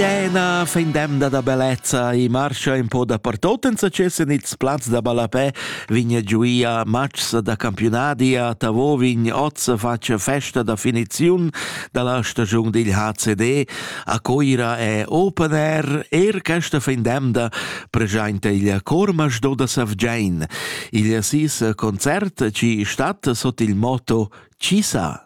Siena, fin demda da bellezza e marscha un po dapertot en succes en ils plaz da ballapè vigna giuia matgs da campiunadi a Tavovin oz face festa da finiziun da la stagiun dil HCD a Coira è open air er questa fin demda presenta il Cormasch do da Savgein. Il sis concert ci stat sot il motto Chi sa?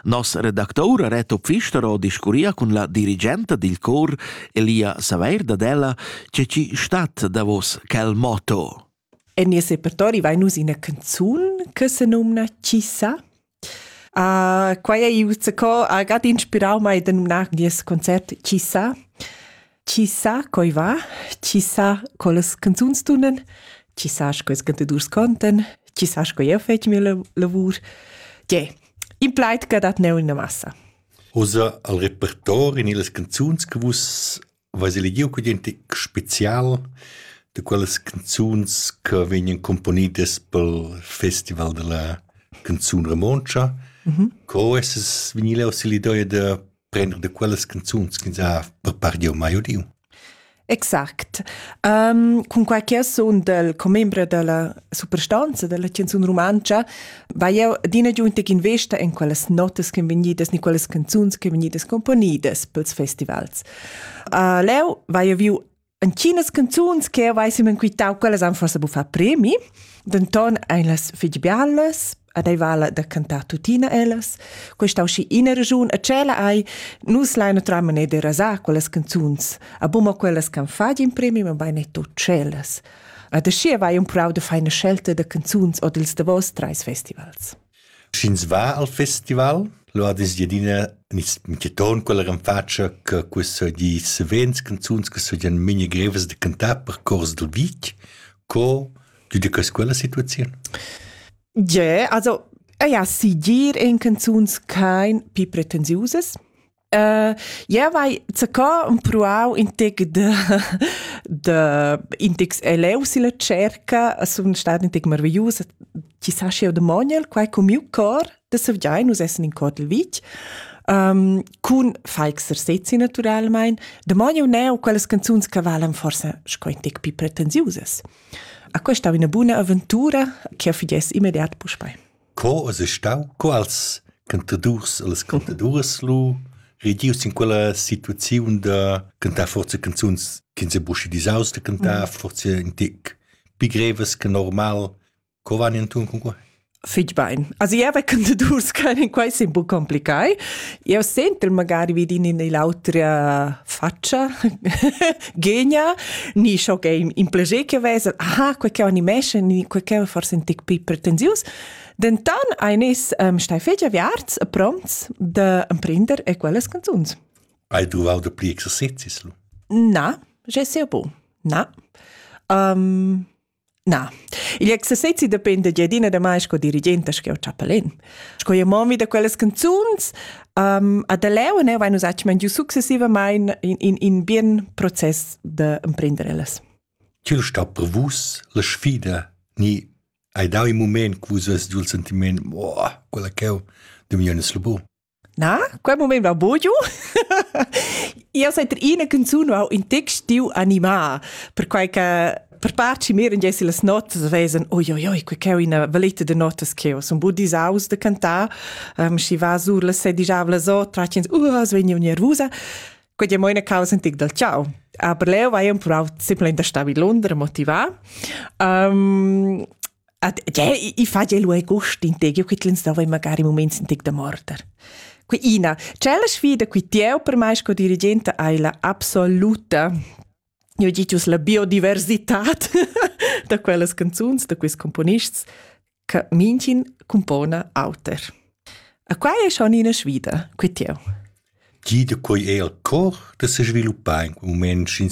Nos redactour Reto Pfistero discurria cun la dirigenta dil cor Elia Saveir dad ella, che ci stat davos quel motto. En nies repertori vai nus ina canzun che se numna Chi sa? Uh, quai ei uzzecò agad inspirau mai da numnar nies concert Chi sa? Chi sa coi va, chi sa collas canzuns tunan, chi sa sco's cantadurs contan, chi sa sco jeu fetg mia lavur. Tge, in plaid che dat neu in massa. Usa al repertori ni las canzuns che vus vais elegiu con gente special de quelles canzuns che vegnan componidas pel Festival della canzun romontsch. Mm -hmm. Co es es vinile auxilidoria de prender de quellas canzuns ch'ins ha prepargiu mai udiu. Exact. Um, cunquai che io sun del commembre della superstanza della canzun romanza, va io adina giunta in vesta in quelles notas che vegnidas, ni quelles canzuns che vegnidas componidas pels festivals. Uh, leu va io viu Entginas canzuns che avessim enquitau quellas han forse buffà premi, denton ein las fetg bialas, ad ei vala da cantar tuttina ellas. Questa usci ina regiun a cella ai, nus lai natram ne de rasar quellas canzuns, a bumma quellas can fagin premi, ma bein netto cellas. A da schi vai un prau de feina scelta de canzuns od ils davos treis festivals. Sch'ins va al festival, lu ad es adina inquieton quella renfatscha che questa di savens canzuns che sajan memia grevas da cantar per cors dil vitg, co giudecass quella situaziun? Ie, also, ja, sigir ein canzuns kein pli pretensiusas. Uh, ja vai zacò un pruau in tec de de in tec eleu si la cerca sun stat in tec marvellus chi sa sch'eu de monel quai cu miu cor de savgiai nus essen in Kotel Vitg um, cun faixer sezzi naturalmein de monel neu quellas canzuns che valan forse sco in tec pi pretensiusas a questa una buna avventura che fides immediat puspei Co es es stau? Quals cantadurs e las cantaduras lu redius in quella situaziun da cantar forza canzuns ch'ins è buschi disaus da cantar, forse in tic pi grevas che normal. Co van inturn cun quei? Fitg bain. Also ja, bei Cantadurs können quai sei un po complicato. Eu sento magari vidin in l'autra faccia genia ni scho che in plaisir che vesa aha quei che animesce ni quei che forse un tic più pretensius dentan eines ähm, steifelgia viarts prompts de emprender e quellas canzuns hai truvau de pli exercizis lu na je sais pas na um, Na, igl exercezi dependa gia adina da mai sco dirigenta sco chapelin. Sco io momi da quellas canzuns, um, a da leu ne vain usatgement giu successivamain in, in, in bien process da emprender ellas. Tül sta per vus la sfida, ni hai dau in moment che vus vest giu il sentiment, oh, quella cheu, de miu nes labor. Na, quel moment va bugiu. Io set er ina canzun ho in text tiu animà, perquai che per part ci miren jessi las notas vesen, oi oi oi, quei che una valetta de notas che ho sun bu disaus de cantar, um, si va sur las sedijavlas o tracins, uh, svegni nervusa. Quei è moina causa antic dal ciao. Aber leo vai un purau simplemente da sta vi Londra motivà. Um, At, cioè, i, i fa gelo e gust in te, io qui tlens da magari moments in tic da morter. Qui ina, cella sfida qui tieu per mai sco dirigente hai la absoluta io ho dit la biodiversità da quellas canzuns, da questi componists, che minchin compona auter. E qua è schon ina sfida, qui tieu. Gida quei è al cor da se sviluppar in moment in